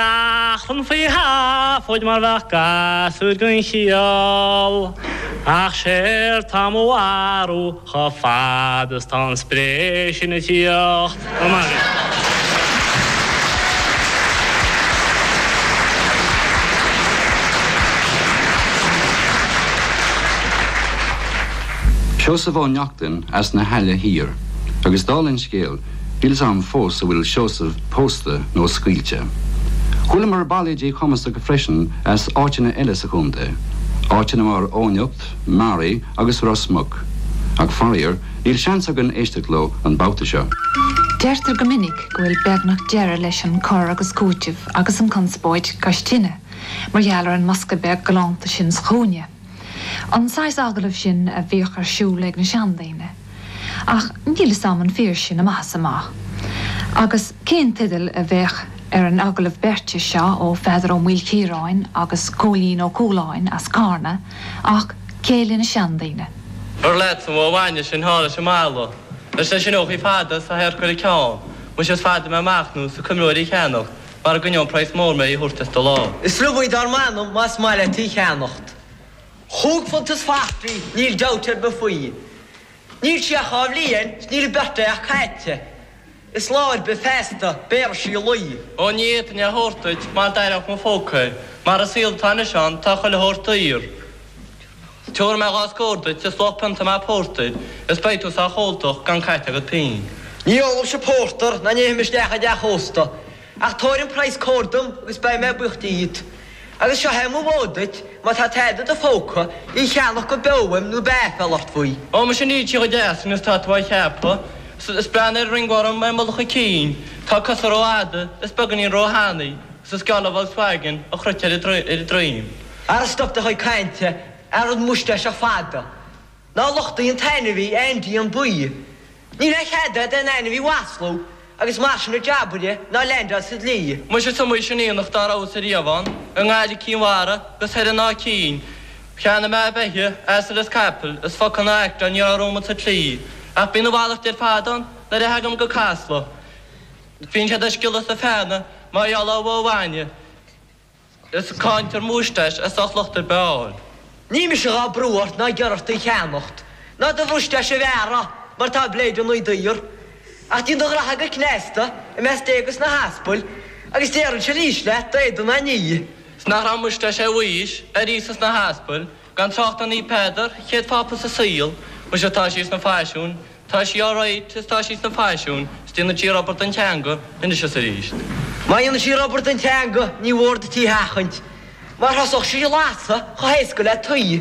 Seachtain faoi thaifid mar bheadh gasúir gan chiall, Ach séard 'tá mo mharú chomh fada is 'tá an spré sin ag tíocht. Seosamh Ó Neachtain as na hAille Thiar agus dála an scéil, Níl's 'am fós an bhfuil Seosamh pósta nó scaoilte. Chualamar bailéidí cumasacha freisin as áiteanna eile sa chontae, áiteanna mar Eoghanacht, Meáraí agus Ros Muc, ach faraor níl seans againn éisteacht leo an babhta seo. Deirtear go minic go bhfuil beagnach deireadh leis an cur agus cúiteamh agus an conspóid cois tine mar gheall ar an mbosca beag galánta sin sa chúinne. An saghas agallamh sin a bhíodh ar siúl ag na seandaoine. Ach níl 'fhios a'm an fíor sin amach is amach. Agus cén teideal a bheadh ar an agallamh beirte seo ó Pheadar Ó Maoilchiaráin agus Cóilín Ó Cualáin as Carna ach Céilí na Seandaoine? An leatsa an bhó bhainne sin thall ag an mballa, leis na sineachaí fada is a hadharc ar a ceann, muise is fada mé amach nó is go gcuimhneoinn í a cheannacht, Mara gcoinneodh praghas mór mé í a thabhairt as do lámh. Is liom í dar m'anam más maith leat í cheannacht. Chúig phunt is forty níl dabht ar bith faoi. Níl sí ach dhá bhliain 's níl a birthday ach caithte. Is lá ar bith feasta béarfaidh sí lao. Ó ní fhéadfainn é thabhairt duit mar d'aireodh mo phóca é. Mar an saol atá anois ann tá chuile shórt daor. Tiubharfaidh mé dhá scór duit is luach pionta maith pórtair, is beidh tú sách óltach gan caite agat pínn. Ní ólfaimse pórtar ná ní théim isteach i dteach ósta, ach tabhair an praghas cóir dom agus beidh mé buíoch díot. Agus seo é mo mhóid duit, má tá tada i do phóca, í cheannach go beo uaim nó beidh aiféal ort faoi. Ó, muise níl sí chomh deas sin is tá tú a cheapadh, is breathnaigh ar an ringworm i mullach a cinn, tá a cosa ró fhada, is beagáinín ró thanaí, is is geall le Volkswagen an chruit ar a droim. Ara stop do chuid cainte, a rud múisteáiseach fada. Ná lochtaigh an t-ainmhí, Aindí, an baoi. Níl a chead a'd aon ainmhí mhaslú agus mar sin ar jabaire ná leaindeáil sa dlí. Muise is iomaí sin aonach dá rabhas-sa riamh ann, i nGaillimh, Cinn Mhara 'gus thoir in Áth Cinn. Cheannaigh mé beithígh, asail is caiple, is focal ná aicteáil ní raibh romham sa tslí. Ach bíonn a mhalairt ar fad ann nuair a theagaim go Casla. Bíonn siad ag sciolladh is ag feannadh mar gheall ar bhó bhainne. is caint ar mhúisteáis as ucht locht ar bith a fháil. Níl mise dhá brú ort ná ag iarraidh ort í a cheannacht, ná do mhúisteáis a bhearradh, mar tá bléideannaí daor. Ach díon do ghraithe go cneasta, i measc Dé agus na hAspail, agus déarfainnse arís leat, d'éadan a ní. 's nach raibh múisteáis ar Mhaois, ar Íosa 's na hAspail, gan trácht ar Naomh Peadar, chéad Phápa sa saol, muise tá sí sna faisiúin, Tá sí alright is tá sí san fhaisiún is déanann sí rubber den teanga anois is arís. Má dhéanann sí rubber den teanga ní mhór duit í a sheachaint mar thosódh sí ag lasadh chomh héasca le tuí.